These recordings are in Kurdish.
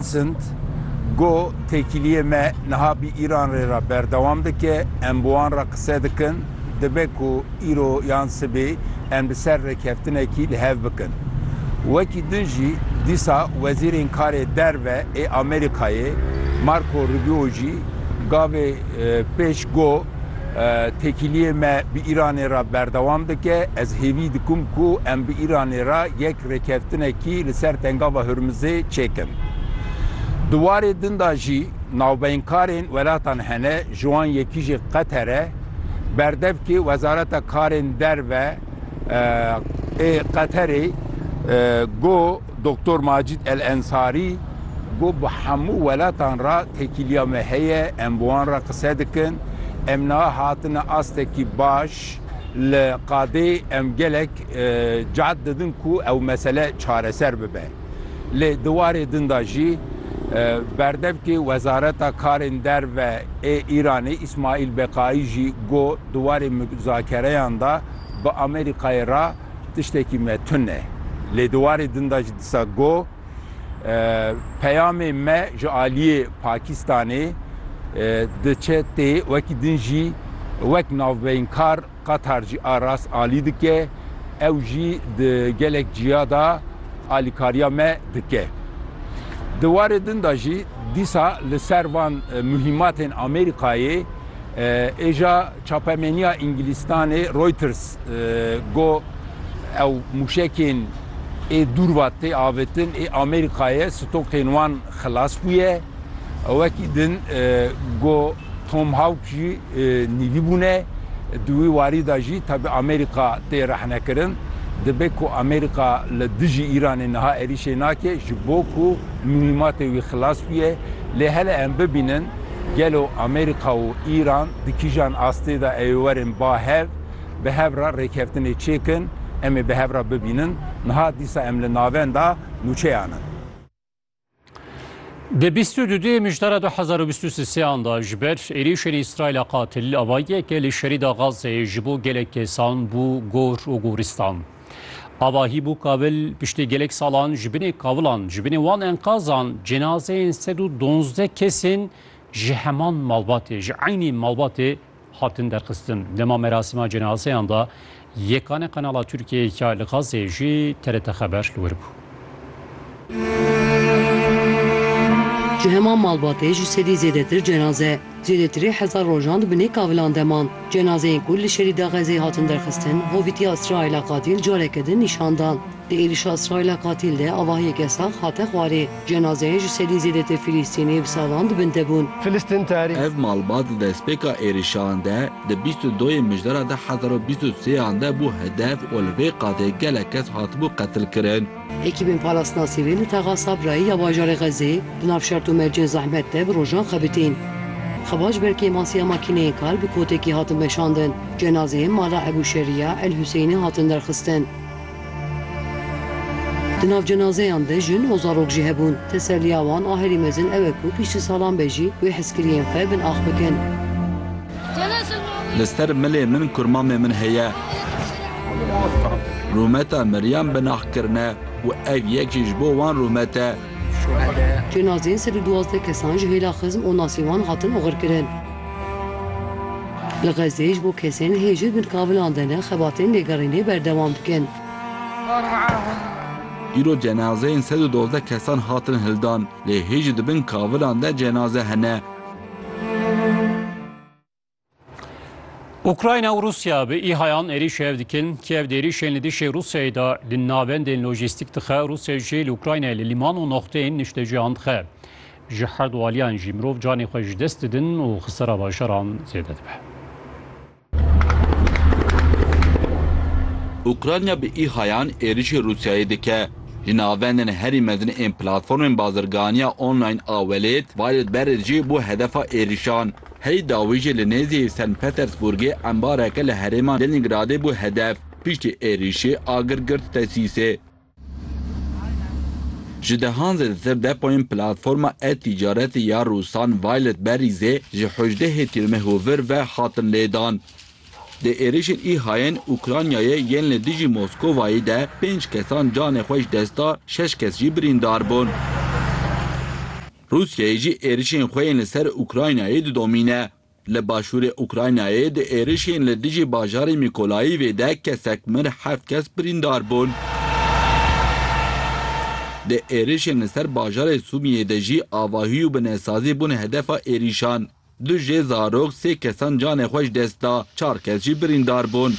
Sint, Go têkiliyê me niha bi Îran rê re berdewam dike, em bi wan re qise dikin, dibe ku îro yan sibê em li ser rêkeftinekî li hev bikin. Wekî din jî dîsa Wezîrên Karê Derve ê Amerîkayê Marco Rubio jî gavê pêş go, Têkiliyê me bi Îranê re berdewam dike. Ez hêvî dikim ku em bi Îranê re yek rêkeftinekî li ser Tengava Hurmizê çêkin. Di warê din de jî navbeynkarên welatan hene, ji wan yekî jî Qeter e. Berdevkê Wezareta Karên Derve ê Qeterê got, Doktor Macîd El Ensarî got, Bi hemû welatan re tekîliya me heye, em bi wan re qise dikin. Em niha hatine astekî baş. Li qadê em gelek cehd didin ku ew mesele çareser bibe. Lê di warê din de jî berdevkê Wezareta Karên Derve ê Îranê Îsmaîl Beqaî jî got, Di warê muzakereyan de bi Amerîkayê re, Tiştekî me tun e. Lê di warê din de jî disa got, Peyamê me ji aliyê Pakistanê diçe tê, wekî din jî wek navbeynkar Qatar jî a rast alî dike, ew jî di gelek ciya de alîkariya me dike. Di warê din de jî dîsa li ser van muhîmatên Amerîkayê êja. Çapemeniya Îngilîstanê Reuters got ew mûşekên ê dûrva tê avêtin ê Amerîkayê stokên wan xilas bûye. Wekî din got Tomhawk jî nîvî bûne. Di wî warî de jî tevî Amerîka tê rexnekirin. Dibe ku Amerîka li dijî Îranê niha êrîşê nake ji bo ku mihîmatê wî xilas bûye. Lê hele em bibînin. Gelo Amerîka û Îran di kîjan astê de ê werin ba hev, bi hev re rêkeftinê çêkin, em ê bi hev re bibînin. Niha dîsa em li navenda nûçeyan in. Di bîst û du duyê mijdara du hezar û bîst û sêan de ji ber êrîşên Îsraîla qatil, avahiyeke li şerîda Gazeyê ji bo gelek kesan bû gor û goristan. Avahî bû Kabil piştî gelek salan ji binê kavilan, ji binê wan enqazan cenazeyên sed û donzdeh kesên ji heman malbatê, ji eynî malbatê hatin derxistin. Dema merasîma cenazeyan de yekane kanala Tirkiyeyê ya li Xazzeyê jî TRT Xeber li wir bû. Ji heman malbatê ji sedî zêdetir cenaze, zêdetirê hezar rojan di binê kavilan de man. Cenazeyên ku li şerî da Xezeyê hatin derxistin, hovîtiya Îsraîla Katîl careke din nîşan dan. Di êrişa Îsraîla Katîl de avahiyeke sax hate xwarê. Cenazeyên ji sedî zêdetir Filîstînî bi salan di bin de bûn. Ev malbat di destpêka êrişan de Di bîst û doyê mijdara du hezar û bîst û sêyan de bû hedef û li vê qadê gelek kes hatibû qetilkirin. Ekîbên parastinasî rê li Texa Sabrayê ya bajarê Xezê di nav şert û mercên zehmet de bi rojan xebitîn. Xebaç ber kêma siya makîneyên kal bi kotekî hatin veşandin. Cenazeyên mala Ebû Şeriya El Huseyinê hatin derxistin. Di nav cenazeyan de jin û zarok jî hebûn. Teselliya wan a herî mezin ew e ku piştî salan be jî wê hezkiriyên xwe bin ax bikin. Li ser milê min kurmamê min heye. Rûmeta miriyan binaxkirine û ev yek jî ji bo wan rûmet e. Cenazeyên sed û duwazdeh kesan ji hêla xizm û nasîwan hatin oxirkirin. Li Xezzeyê ji bo kesên hê jin bin kavilan de ne xebatên lêgerînê berdewam dikin. Îro cenazeyên sed û dozdeh kesan hatin hildan lê hê jî di bin kavilan de cenaze hene. Ukrayna û Rusya bi îhayan êrîş hev dikin. Kiev di êrîşên li dişê Rusyayê de di navendên lojîstîk dixe, Rusya jî li Ukraynayê li lîman û noxteyên niştejiyan dixe. Ji her du aliyan jî mirov canê xwe ji dest didin û xisara bajaran zêde dibe. Ukrayna bi îhayan êrîşê Rusyayê dike. Li navendên herî mezin ên platformên bazirganiya online a welêt, Violet Berêt jî bû hedefa êrîşan. Hey dawî jî li nêzî Sen Petersburgê embareke li herêma Lenîngradê bû hedef. Piştî êrîşê agir girt Tesîsê. Ji dehan zêdetir depoyên platforma e-tîcaretê ya Rûsan Violet Berrîzê ji hejdehê tîrmeh û vir ve hatin lêdan. Di êrîşên İHA'yên Ukraynayê yên li dijî Moskowayê de pênc kesan canê xwe ji dest da, şeş kes jî birîndar bûn. Rûsyayê jî êrişên xwe yên li ser Ukraynayê didomîne. Li başûrê Ukraynayê di êrişên li dijî bajarê Mîkolayîvê de kesek mir heft kes birîndar bûn. Di êrişên li ser bajarê Sûmiyê de jî avahî û binesazî bûn hedefa êrişan. Du jê zarok, sê kesan canê xwe ji dest da, çar kes jî birîndar bûn.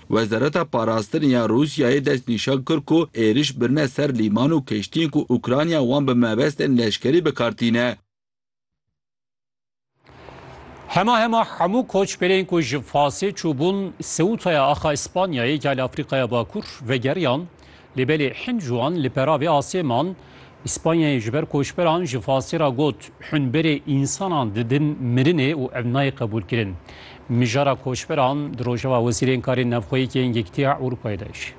Wezareta Parastinê ya Rûsyayê dest nîşan kir ku êriş birine ser lîman û keştiyên ku Ukrayna wan bi mebestên leşkerî bi kar tîne. Hema hema hemû koçberên ku ji Fasê çûbûn Seûtaya axa Îspanyayê, Geala Afrîkaya Bakur, vegeriyan, Lê belê hin ji wan li peravê asê man. Îspanyayê ji ber koçberan ji Fasê re got, Hûn berê însanan didin mirinê û ev nayê qebûlkirin. Mijara koçberan di rojeva Wezîrên Karên Navxweyîk yên Yekîtiya Ewropayê de jî.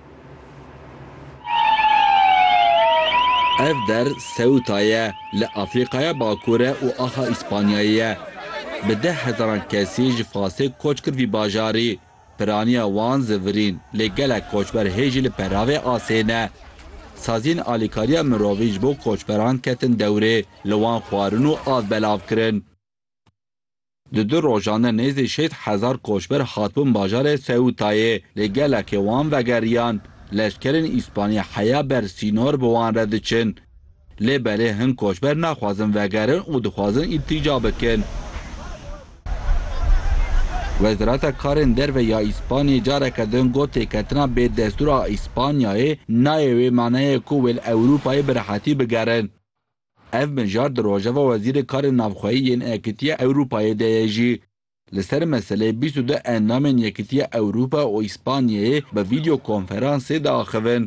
Ev der Ceuta ye, li Afrîkaya Bakur e û axa Îspanyayê ye. Bi deh hezaran kesî ji Fasê koç kir vî bajarî. Piraniya wan zivirîn lê gelek koçber hê jî li peravê asê ne. Saziyên alîkariya mirovî ji bo koçberan ketin dewrê, li wan xwarin û av belav kirin. Di du rojan de nêzî şêst hezar koçber hatibûn bajarê Seûtayê lê gelekê wan vegeriyan. Leşkerên Îspanyî heya ber sînor bi wan re diçin. Lê belê hin koçber naxwazin vegerin û dixwazin îltîca bikin. Wezareta Karên Derve ya Îspanyayê careke din got têketina bêdestûr a Îspanyayê nayê wê maneyê ku wê li Ewrûpayê bi rehetî bigerin. Ev mijar di rojeva Wezîrê Karên Navxweyî yên Yekîtiya Ewrûpayê de ye jî. Li ser meseleyê bîst û du endamên Yekîtiya Ewrûpa û Îspanyayê bi vîdyokonferansê diaxivin.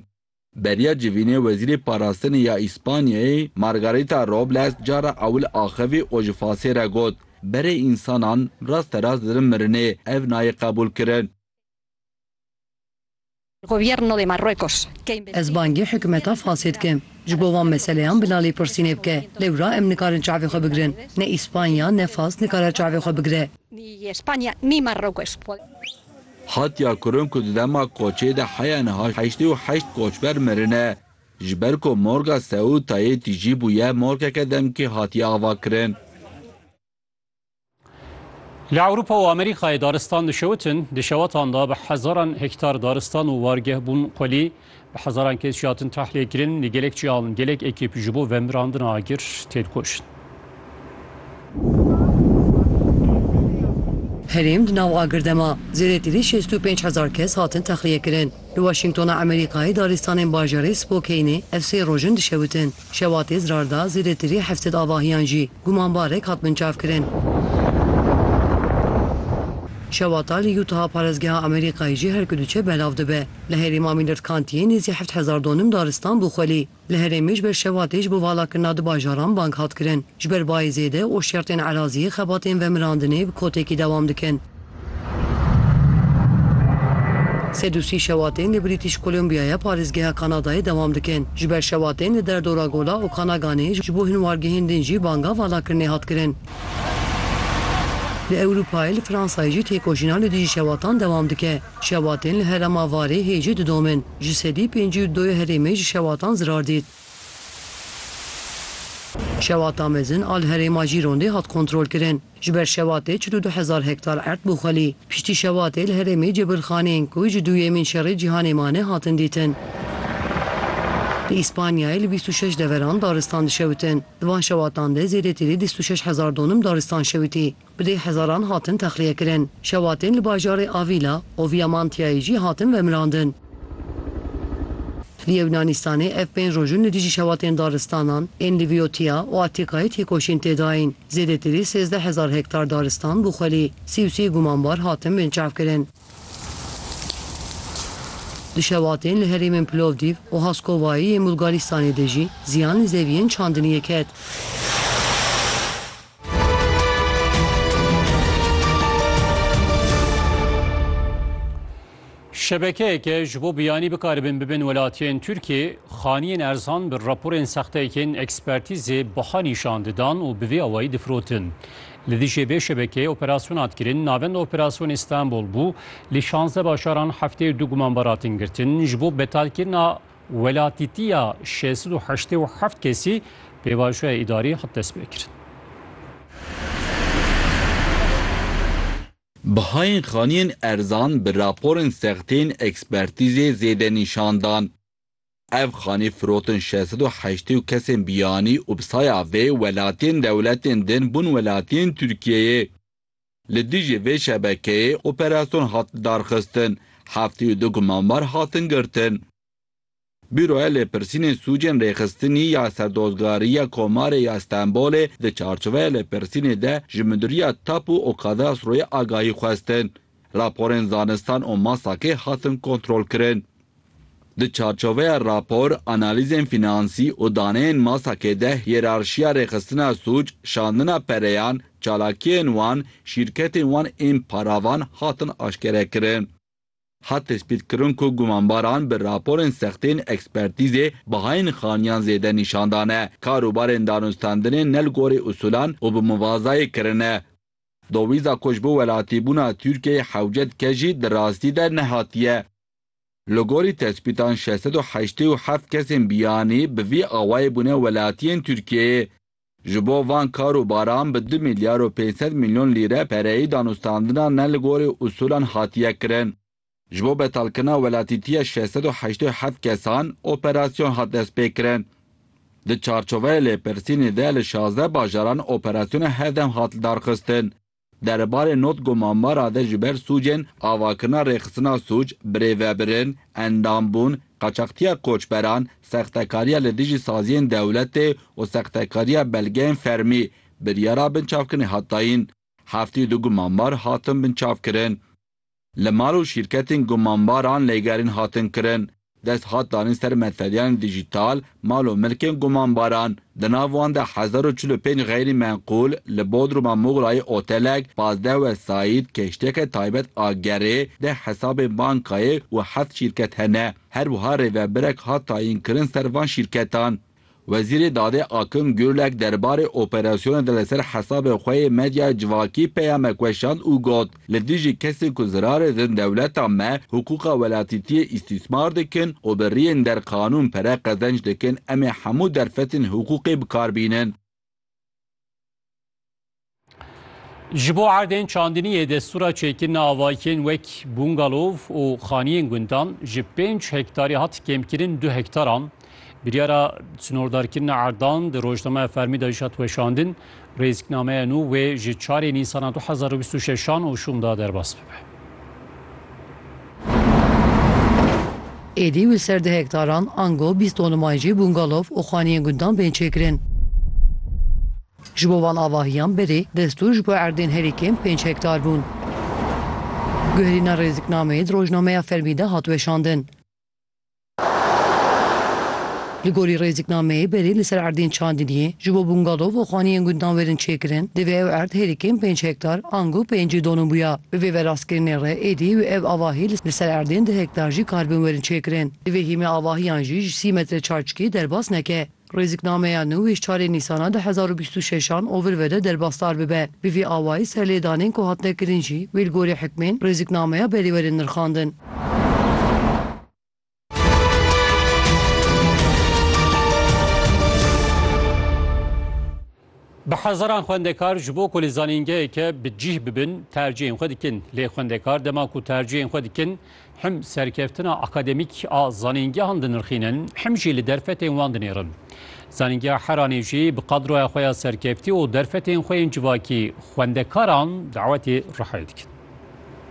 Beriya civînê Wezîrê Parastinê ya Îspanyayê Margarita Robles cara ewil axivî û ji fasê re got, Berê însanan rasterast dirin mirinê, ev nayê qebûlkirin. Ez bangê hikûmeta fasê dikim ji bo van meseleyan bila lêpirsînê bike. Lewra em nikarin çavê xwe bigirin. Ne Îspanya ne fas nikare çavê xwe bigire. Hatiye kirin ku di dema koçê de heya niha heştê û heşt koçber mirine. Ji ber ku morga Seûtayê tijî bûye morgeke demkî hatiye avakirin. Li Ewropa û Amerîkayê daristan dişewitin, di şewetan de bi hezaran hektar daristan û wargeh bûn xwelî. Bi hezaran kes jî hatin tahliyêkirin, lê gelek cihan, gelek ekîp ji bo vemirandina agir tên kuştin. Herêm di nav agir de ma. Zêdetî li şêst û pênc hezar kes hatin texliyekirin. Li Washingtona Amerîkayê daristanên bajarê Spokaynê ev sê roj in dişewitin. Şewa Tezrar de zêdetirî heft sed avahiyan jî gumanbarek hat binçavkirin. Şewa Tal li Utah a parêzgeha Amerîkayê jî her ku diçe belav dibe. Li herêm a Mîlirtkantiyê nêzî heft hezar donim daristan bû xwelî. Li herêmê ji ber şewatê ji bo valakirina du bajaran bang hat kirin. Ji ber bayê zêde û şertên eraziyê xebatên vemirandinê bi kotekî dewam dikin. Sed û sî şewatên li Brîtîş Kolombiyayê parêzgeha Kanadayê dewam dikin. Ji ber şewatên li derdora Gola Okanaganê ji bo hinwargehên din jî banga valakirinê hat kirin. Li Ewrûpayê li Fransayê jî têkoşîna li dijî şewatan dewam dike. Şewatên li herêma Varê hê jî didomin. Ji sedî pêncî û du yê herêmê ji şewatan zirar dît. Şewata mezin a li herêma Jîrondê hat kontrolkirin. Ji ber şewatê çil û du hezar hektar erd bû xwelî. Piştî şewatê li herêmê cebirxaneyên ku ji duyemîn şerê cîhanê mane hatin dîtin. Li Îspanyayê li bîst û şeş deveran daristan dişewitin. Di van şewatan de zêdetirî dîst û şeş hezar donim daristan şewitî. Bi deh hezaran hatin texliyekirin. Şewatên li bajarê Avîla û Viamantiyayê jî hatin vemirandin. Li Yewnaanistanê ev pênc roj in li dijî şewatên daristanan ên li Vîyotiya û Atîkayê têkoşîn tê dayîn. Zêdetirî sêzdeh hezar hektar daristan bû xwelî. Sî û sê gumanbar hatin binçavkirin. Di şewatên li herêmên Plovdîv û Haskovayê yên Bulgarîstanê de jî ziyan li zeviyên çandiniyê ket. Şebekeyeke ji bo biyanî bikaribin bibin welatiyên Tirkiyê, xaniyên erzan bi raporên sexteyekên ekspertîzê biha nîşan didan û bi vê awayî difirotin. Li dijî vê şebekeyê operasyon hat kirin, navenda operasyonê Stenbol bû, li şanzdeh bajaran heftê û du gumanbar hatin girtin, ji bo betalkirina welatîtiya şêst sed û heştê û heft kesî pêvajoya îdarî hat destpêkirin. Bihayên xaniyên erzan bi raporên sextên ekspertîzê zêde nîşan dan. Ev xanî firotin şeş sed û heştê û kesên biyanî û bi saya vê welatiyên dewletên din bûn welatiyên Tirkiyeyê. Li dijî vê şebekeyê operasyon hat lidarxistin, heftê û du gumanbar hatin girtin. Bûroya Lêpirsînên Sûcên Rêxistinî ya Serdozgariya Komarê ya Stenbolê di çarçoveya lêpirsînê de ji Midûriya Tapu û Kadaastroyê agahî xwestin. Raporên zanistan û masakê hatin kontrolkirin. Di çarçoveya rapor, analîzên fînansî û daneyên masakê de hîyerarşiya rêxistina sûc, şandina pereyan, çalakiyên wan, şîrketên wan ên paravan hatin aşkerekirin. Hat tespîtkirin ku gumanbaran bi raporên sextên ekspertîzê bihayên xaniyan zêde nîşan dane, karûbarên danûstandinê ne li gorî usûlan û bi muvazayê kirine. Dowîza ku ji bo welatîbûna Tirkiyeyê hewce dike jî di rastî de nehatiye. Li gorî tespîtan şeş sed û heştê û heft kesên biyanî bi vî awayê bûne welatiyên Tirkiyeyê. Ji bo van kar û baran bi du milyar û pênc sed milyon lîre pereyî danûstandina ne li gorî usûlan hatiye kirin. Ji bo betalkirina welatîtiya şeş sed û heştê û heft kesan operasyon hat destpêkirin. Di çarçoveyê lêpirsînê de li şazdeh bajaran operasyona hevdem hat lidarxistin. Derebarê notgo Mamara de ji ber sûcên avakirina rêxistina sûc, birêvebirin, endambûn, qaçaxtiya koçberan, sextekariya li dijî saziyên dewletê û sextekariya belgeyên fermî, biryara binçavkirinê hat dayîn. Heftî du gu Mamar hatin binçavkirin. Li mal û şîrketên gumanbaran lêgerîn hatin kirin. Dest hat danîn ser meseleyên dijîtal, mal û milkên gumanbaran. Di nav wan de hezar û çil û pênc xeyrî menqûl, li Bodruma Mugrayê otelek, pazdeh wesayît, keştiyeke taybet a gerê, deh hesabên bankayê û heft şîrket hene. Her wiha rêvebirek hat tayînkirin ser van şîrketan. Wezîrê Dadê Akim Gurlek derbarê operasyona de li ser hesabê xwe yê medyaya civakî peyamek weşand û got, Li dijî kesên ku zirarê din dewleta me hiqûqa welatîtiyê îstîsmar dikin û bi riyên der qanûn pere qezenc dikin, em ê hemû derfetên hiqûqê bikar bînin. Ji bo erdên çandinî yê destûra çêkirina avayikên wek bungalov û xaniyên gundan ji pênc hektarî hat kêmkirin du hektaran. Biryara snordarkirina erdan di rojnameya fermî de jî hat weşandin. Rêziknameya nû wê ji çarê Nîsana du hezar û bîst û şeş an û şûn da derbas bibe. Êdî li ser du hektaran ango bîst tonûman jî bûngalov û xaniyên gundan bên çêkirin. Ji bo van avahiyan berê destûr ji bo erdên herî kêm pênc hektar bûn. Guherîna rêziknameyê di rojnameya fermî de hat weşandin. Li gorî rêziknameyê berê li ser erdên Çandiniyê ji bo bûngalov û xaniyên gundnawêrin çêkirin, divê ew erd hêrikên pênc hektar, ango pêncî donû bûya. Bi vê verastkirinê re êdî wê ev avahî li ser erdên du hektar jî karbin werin çêkirin. Divê hîmê avahiyan jî ji sî metre çarçikî derbas neke. Rêziknameya nû ê ji çarê Nîsana du hezar û bîst û şeş an ovir ve de derbasdar bibe. Bi vî awayî serlêdanên ku hatine kirin jî wê li gorî hikmên rêziknameya berî werin nirxandin. Bi hezaran xwendekar ji bo ku li zanîngeheke bi cîh bibin tercihên xwe dikin. Lê xwendekar dema ku tercihên xwe dikin him serkeftina akademîk a zanîngehan dinirxînin him jî li derfetên wan dinêrin. Zanîngeha Heranê jî bi qadroya xwe ya serkeftî û derfetên xwe yên civakî xwendekaran dawetê rihayê dikin.